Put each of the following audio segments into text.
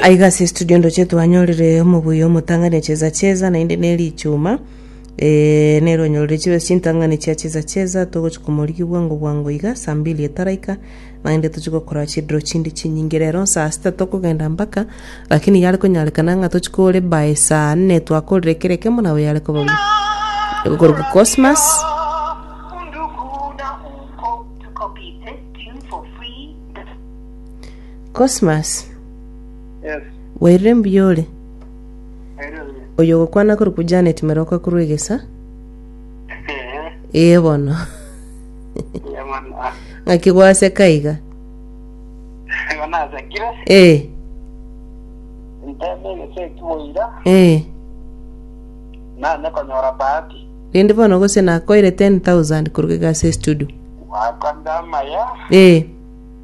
Aiga ase estudio ndoche twanyorire omobuya omotang'ani cheza cheza naende ne richuma eh, nere onyorire chibe chintang'ani chia cheza cheza togochia komorigia bwango bwango iga saa mbili etaraika naende tochia gokora chidiro chinde chinyinge rero saa sita tokogenda mpaka lakini yare konyarekana ng'a tochia kore by saa nne twakorire kera ekemo nabo yare koba buya okoruga cosmas Cosmas, Yes, wairire mbuya ore? aire buya. Oyo ogokwana korwa kwa Janet Meroka korwa egesa? Eh, Ee bono. ya mwana. Ah, Ng'aki gwaseka iga? igo nasekire, Ee, nteme egese ekiboira, ee. nanye konyora bahati. Rindi bono gose nakoire 10,000 korwa egasi estudio. Wakanda amaya, Ee,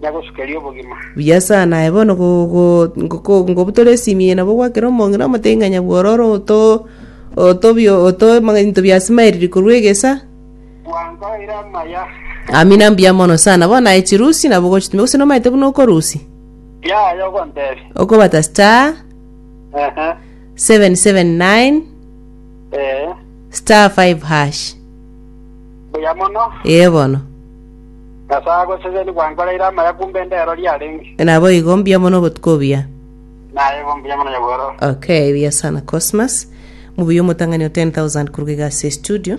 na gosukeria obogima. Buya sana, aye bono ngobutore esimi eye nabo gwakere omong'ina omotenyi-ng'anya bw'ororo otobinto bia Smired korwa egesa. Bwankoire amaya. Amina mbuya mono sana. Bono aye chirusi nabo ogochitumia gose nomanyete buna okorusi? Yaya ogontebia. Okobata star Ehe. 779 Ee. star 5 hash. Buya mono. Ee bono. Nyasae agoseseni gwankoreire amaya kumbe endero riarenge. Naboigo mbuya mono obotuko obuya. Nayebo mbuya mono nyagoro. Okay, buya sana Cosmas. Mubuya omotang'ani o 10,000 koruga iga ase estudio.